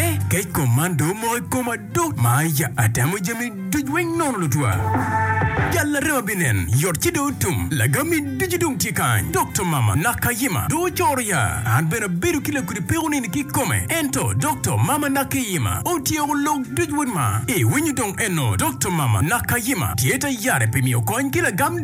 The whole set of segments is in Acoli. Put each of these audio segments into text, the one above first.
Eh, kec kom man do omoko i koma do. Maya, atemo jami duc weng nono lutwa. Jal larema binen, yot ci do otum. Lagami ducu dong tye kany. Dokta mama Nakayima do ocoro ya. An bene abedo ki lakudi peko nini ki kome. Ento Dokta mama Nakeyima otyeko lok duc wod ma. Iwinyo dong eno Dokta mama Nakayima tye ta yare pi miyo kony ki lagam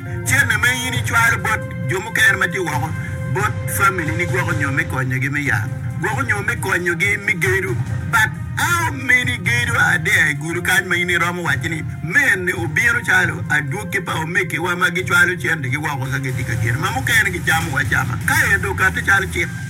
Cente ma in icwalo bot jo mukene ma tye woko bot familini gwoko nyo me konyogi me yat, gwoko nyo me konyogi me gedo. But how many gedo are there i gulu kany ma in iromo waco ni mene obino calo adwogi pa omegiwa ma gicwalo centegi woko ka gitye ka gedo ma mukene gicamo acama ka ento okati calo cik?